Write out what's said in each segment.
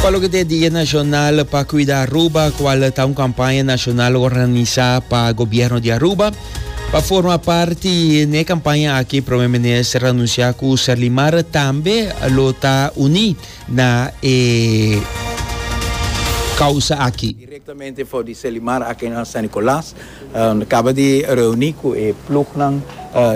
Pa loke ta e Dia Nacional pa Cuida Aruba, cual ta un campaña nacional organisa pa Gobierno di Aruba. Pa forma parti n'e campaña aki, Prome Minister anuncia cu Serlimar tambe lo ta uni na e causa aki. Directamente for di Serlimar aki na San Nicolas. Nos caba di reuni cu e plugnan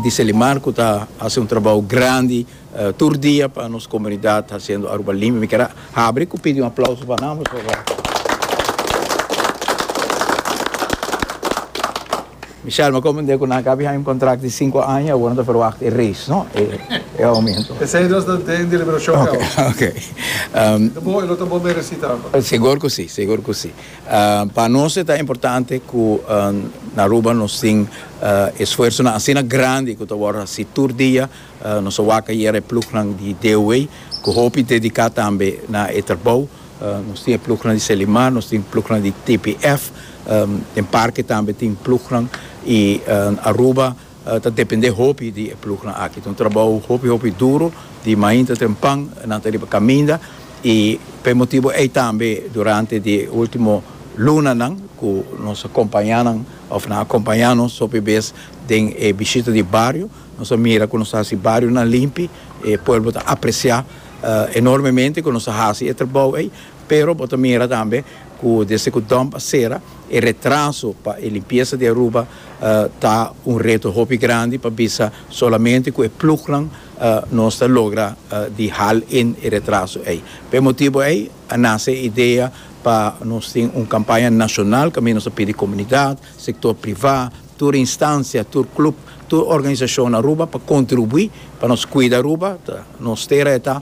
di Serlimar cu ta haci un trabao grandi. Tur dia pa nos comunidad haciendo Aruba limpi. Mi quier habri cu pidi un aplauso pa nan pasobra Michelle me comende cu nan a cabi haña un contract di cinco aña y awor nan ta verwacht e raise no e aumento. Esey nos ta den deliberacion di awor. Ok ok. Ta bon e lo ta bon mereci tambe. Segur cu si segur cu si. Pa nos e ta importante cu na Aruba nos tin esfuersonan asina grandi cu ta wor haci tur dia. Nos a wak ayera e plugnan di DOW cu hopi dedica tambe na e trabou. Nos tin e plugnan di Selimar, nos tin plugnan di TPF, den Parke tambe tin plugnan y Aruba ta depende hopi di e plugnan aki. Ta un trabou hopi hopi duro di mainta trempan nan ta riba caminda y pa e motibo ey tambe durante di e ultimo lunanan cu nos a compaña nan of nan a compaña nos hopi bes den e bishita di bario, Nos a mira cu nos ta haci barionan limpi, e pueblo ta aprecia enormemente cu nos a haci e trabao ey, pero bo ta mira tambe cu desde cu dump a cera e retraso pa e limpieza di Aruba ta un reto hopi grandi pa bisa solamente cu e plugnan nos ta logra di haal in e retraso ey. Pa e motibo ey a nace e idea pa nos tin un campaña nacional, caminda nos a pidi comunidad, sector privá, tur instancia, tur club, tur organisacion Aruba pa contribui pa nos cuida Aruba, ta nos tera e ta,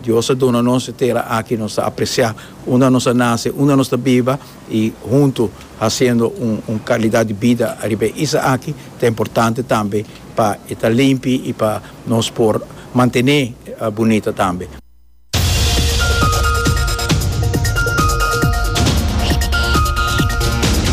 Dios a duna nos e tera aki nos ta aprecia unda nos a nace, unda nos ta biba y hunto haciendo un calidad di bida ariba e isla aki, ta importante tambe pa e ta limpi y pa nos por mantene bunita tambe.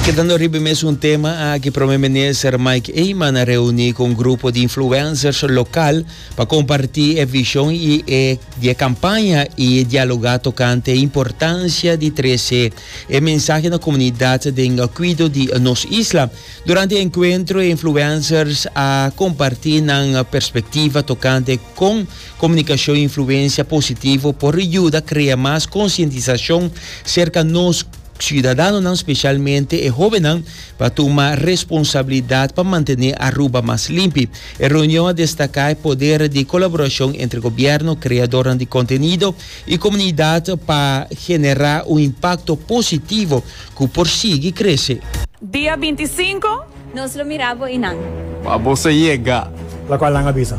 Kedando riba e mesun tema aki, Prome Minister Mike Eman a reuni ku un grupo di influencers lokal pa komparti e vishon di e kampaña i dialogá tokante e importansia di trese e mensahe na komunidat den kuido di nos isla. Durante e enkuentro e influencers a komparti nan perspektiva tokante kon Comunicacion Influencia Positivo por riuda crea mas concientisacion cerca nos ciudadanonan, specialmente e hobennan, pa tuma responsabilidad pa mantene Aruba mas limpi. E reunion a destaca e poder di colaboracion entre gobierno, creadornan di contenido y comunidad pa genera un impacto positivo cu por sigui crece. Dia binti sinku. Nos lo mira bo y nan. Pa bos a yega. Lacual nan a bisa.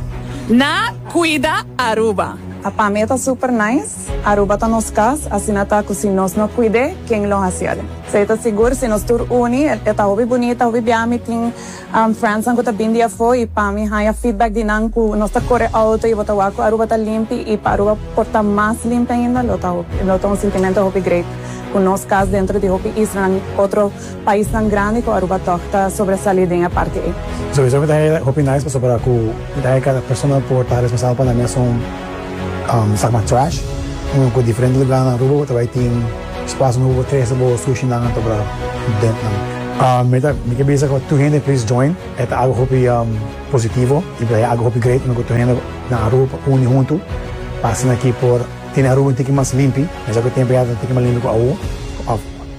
Na cuida Aruba. A pa mi e ta super nice. Aruba ta nos cas, asina ta cu si nos no cuid'e, ken lo haciel? Sa e ta sigur, si nos tur uni, e ta hopi bunita, hopi biaha. Mi tin friendsnan cu ta bin di afo y pa mi haya feedback di nan cu nos ta core auto y bo ta wak cu Aruba ta limpi y pa Aruba por ta mas limpi ainda lo ta un sintimento hopi great cu nos cas dentro di hopi islanan otro Paisnan grandi ku Aruba tòg ta sobresalí den e parti ei. Souso mi ta hei hopi nice pasobra ku mi ta hei kada persona lo por ta responsabel pa nan mesun sak mas trash. Uno ku diferente lugá na Aruba bo ta bai tin spaso nobo pa trese bo sushinan anto bra dent nan. Mi ta mi ke bisa ku tur hende please join. E ta algu hopi positivo i ta algu hopi great uno ku tur hende na Aruba por uni huntu pa asina ki por tene Aruba un tiki mas limpi. Mesa ku e tempu ya ta un tiki mas limpi ku awo.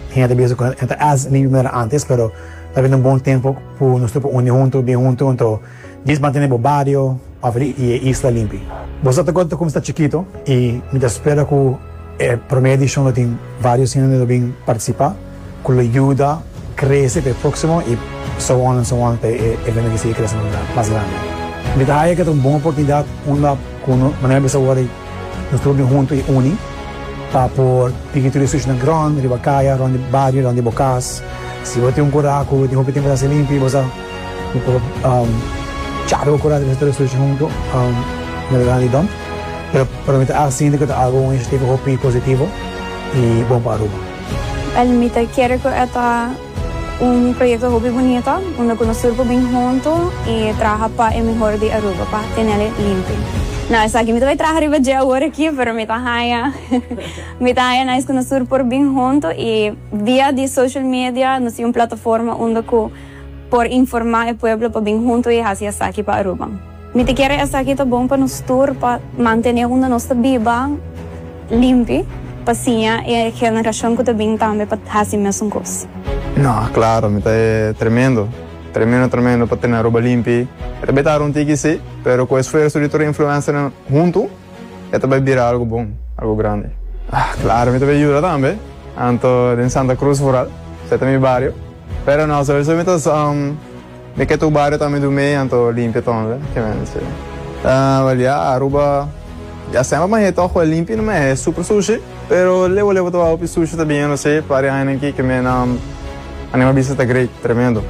Tin hende bisa ku e ta as limpi manera antes, pero ta bin un bon tempu ku nos tur por uni huntu, bin huntu. Anto dies mantene bo bario òf e isla limpi. Bo sa ta kon ta kumsa chikitu i mi ta spera ku e promé edishon lo tin vários hende lo bin partisipá ku lo yuda krese pa e próksimo i so on an so on pa e evento di sigui krese mas grandi. Mi ta haña ku e ta un bon oportunidat unda ku manera mi bisa awor ei. Nos tur mi huntu i uni pa por tiki tur e sucinan grond riba kaya, rond di bario, rond di bo kas. Si bo tin un kura ku tin hopi tempu ta hasi limpi, bo sa bo por chara bo kura riba tur e suci huntu na bira di dom. Pero pero mi ta al siente ku ta algu un inisiativa hopi positivo i bon pa Aruba. Well mi ta kere ku e ta. Un proyekto hopi bunito unda ku nos tur por bin huntu i traha pa e mihor di Aruba pa tenel e limpi. No, esaki mi ta bai traha riba dje awor aki, pero mi ta haña mi ta haña nice ku nos tur por bin huntu i via di social media nos tin un plataforma unda ku por informá e pueblo pa bin huntu i hasi esaki pa Aruba. Mi ta kere esaki ta bon pa nos tur pa mantene unda nos ta biba limpi pa siña e generashon ku ta bin tambe pa hasi mesun kos. No, klaro, mi ta e tremendo, tremendo tremendo pa tene Aruba limpi. E ta bai ta runtiki si, pero ku esfuerso di tur e influensernan huntu e ta bai bira algu bon, algu grandi. Ah, klaro mi ta bai yuda tambe, anto den Santa Cruz vooral, se ta mi bario, pero no, sowieso mi ta. Mi ke tur bario ta mi dumé anto limpia ton we ke mi a mester Well ya Aruba ya semper ma he toco a limpi no me he super sushi pero lewa lewa ta hopi sushi ta bien no se pari aña nan ki ke mi nan a nima bisa ta great tremendo.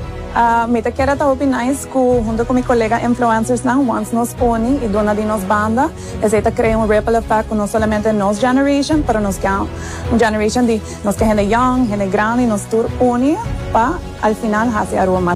Mi ta keda ta hopi nice cu hunto cu mi colega influencers nan wants nos poni y duna di nos banda esey ta crea un ripple effect cu no solamente nos generation pero nos can un generation di Nos ta hende yòng, hende grandi, nos tur uni pa al final hasi Aruba mas.